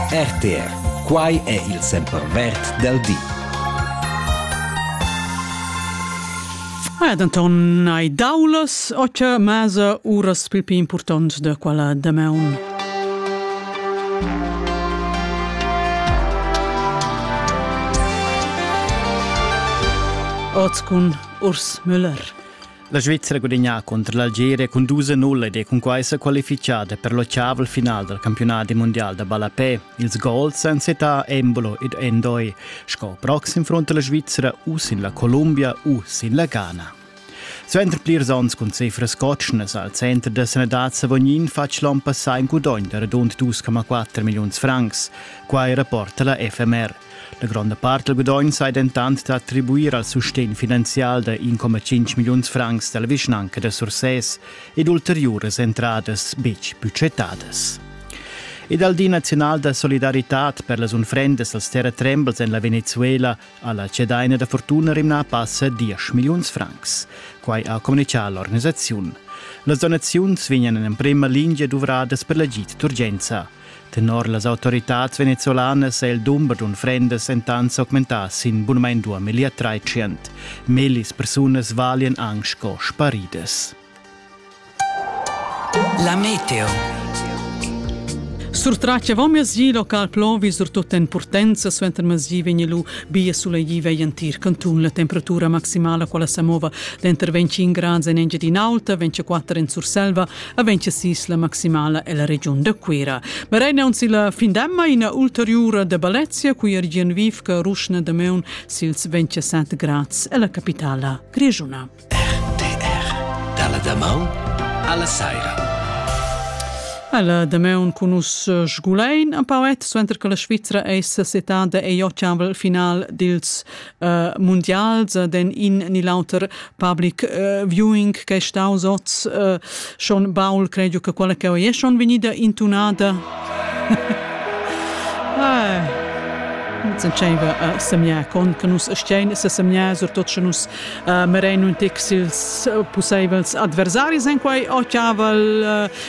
RTR, quai è il sempervert dal di. Ah, denton hai daulas ocha masa uras pil pli impurtont da quella damaun. Oz cun Urs Müller. La Svizzera gudagnà contro l'Algeria cun dus a null ed è cunquai sa qualifichada per l'octaval final dal campiunat mondial da ballapè. Ils gols èn setà Embolo ed Endoi. Sco proxim fronta la Svizzera u sin la Columbia u sin la Ghana. Suenter plirs onns cun cifras cotschnas al center da sanadad Savognin fatg l'onn passà in gudogn da radund 2,4 milliuns francs. Quai rapporta la FMR. La gronda part dal gudogn sai dentant da attribuir al sustegn finanzial da 1,5 milliuns francs da la vischnanca da Sursès ed ulteriuras entradas betg budgetadas. Ed al Di nazional da solidaritad per las unfrendas als terratrembels en la Venezuela ha la cedaina da fortuna rimnà passa 10 milliuns francs. Quai ha communichà l'organisaziun. Las donaziuns vegnan en emprima lingia duvradas per l'agid d'urgenza. Tenor las autoritads venezolanas è il dumber d'unfrendas entant s'augmentà sin bunamain 2300. Mellis persunas valian anc sco sparidas. La meteo. Surtrace vom mesi local plovi surtut en Purtenza suenter mesi vegni lu bia sulegli vegli entir cantun la temperatura maximala quella sa mova denter 25 grads en Engiadin'Alta 24 en Surselva Aventia sis la maximala ella regiun da Cuera. Berein aunzi la findemma ina ulteriura da Balezia cui er gian vivca ruschna da meun sils 27 grads ella capitala grigiuna. RTR Dalla damaun alla saira. Ella dameun cun us eh, sgulein a Pauet, suenter che la Svizra eis setada ei ottavel final dils uh, mundials uh, den in ni l'auter public uh, viewing che è staus oz uh, schon Paul credo che quella che è schon vegnida intunata ah. Sen tscheiva a semia con che nus stein se semia surtot che nus uh, merenu in tec sils uh, puseivels adversaris en quai ochiaval uh,